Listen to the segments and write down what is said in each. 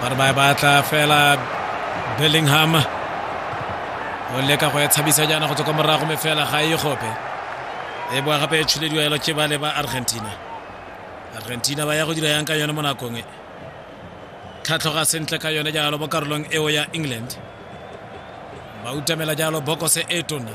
ba re ba e batla fela bellingham o leka go e tshabisa jaana go tswa kwa morago me fela ga e gope e boa gape e tshulediwa elo ke bale ba argentina argentina ba ya go dira yang ka yone mo nakong e tlhatlhoga sentle ka yone jalo mo karolong eo ya england ba utamela jalo bokose e tona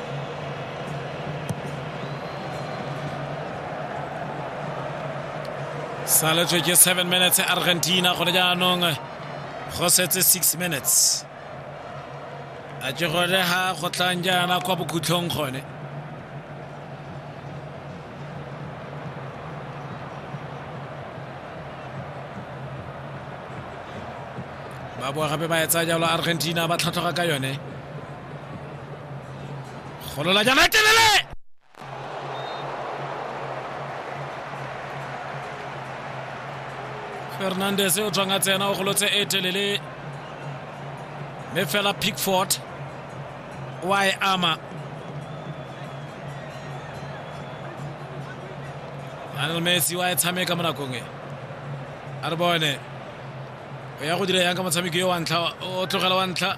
saletswe ke seven minutes argentina gone jaanong go setse six minutes a ke gone ga go tlang jaana kwa bokhutlhong gone ba boa gape ba etsa jalo argentina ba tlhatlhoga ka yone Golola jana e telele! Fernandez o tswang a tsena o golotse e telele mme fela Pickford wa e ama Lionel Messi wa e tshameka mo nakong e a re bone o ya go dira yang ka motshameki yo wa ntlha o tlogela wa ntlha